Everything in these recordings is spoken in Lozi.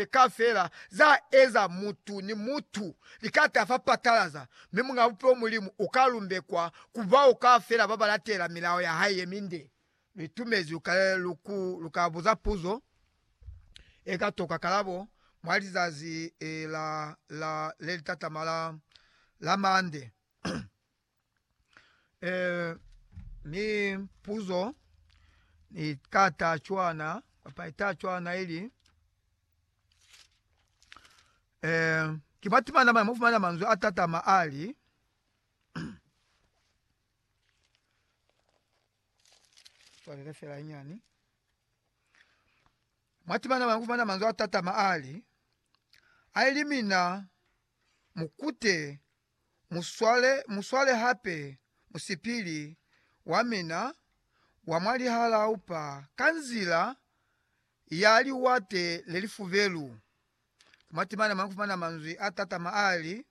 ze ka fela za eza mutu ni mutu li ka ta fa patalaza, mi Muñ'a Bupilo Mulimu u ka lumbekwa ku bao ka fela ba ba latela milao ya hae ye minde. Lu itumezi lu ka lu ku lu ka buza puzo e ka toka kalabo mwa lizazi la la le li tatama la la mande. Eh, ni puzo ni ka ta cwana kapa ita cwana ili eh ki matimana mane mufumana manzwi a tatama ali palole fela inyani matimana mane mufumana manzwi a tatama ali aili mina mukute muswale, muswale hape musipili wamina wa mwa lihalau pa, ka nzila ya liwate lelifubelu. Ku matimana mane kufumana manzwi a tatama ali,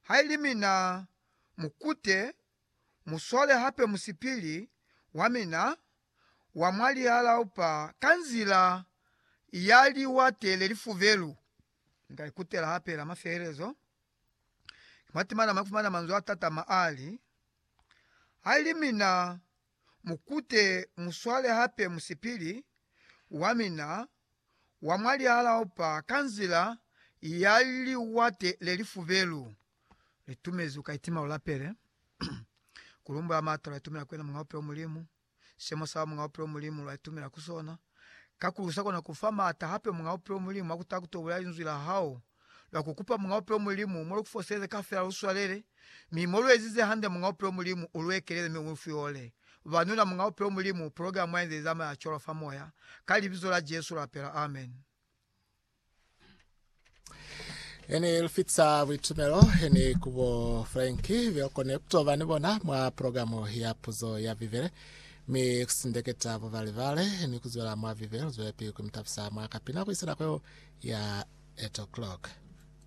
Haili mina, mukute, muswale hape musipili wamina wa mwa lihalau pa, ka nzila ya liwate lelifubelu. Ni ka ikutela hape la mafelezo. Matimana mafumana manzwi atatama ali, Haili mina mukute muswale hape musipili wamina wa mwa lihalaupa ka nzila ya liwate lelifubelu. Litumezi uka itima ulapele kulumbula maata lwa itumela kwena Muñaupe wa Mulimu. Simo sa muñ'a bupilo Mulimu lwa itumela ku sona kakulu sa kona ku fa maata hape muñ'a bupilo Mulimu ha ku taha ku to bulela Linzwi la hao. Lwa ku kupa muñ'a bupilo Mulimu mo lu ku foseze kafela lu swalele, mi mo lu ezize hande muñ'a bupilo Mulimu u lu ekelele mi u lu fihole. Ba nuna muñ'a bupilo Mulimu, pulogalamu ya inze i zamaya cwalo fa moya, ka Libizo la Jesu lapela. Amen. Ene lufitsa buitumelo ene kubo Frank biokone kutoba ni bona mwa progamu ya puzo ya Bibele mi kusindeketa bubalebale ni kuzwela mwa Bibele luzwelepi kumitabisa mwa kapina kuisa nako ya 8 o'clock.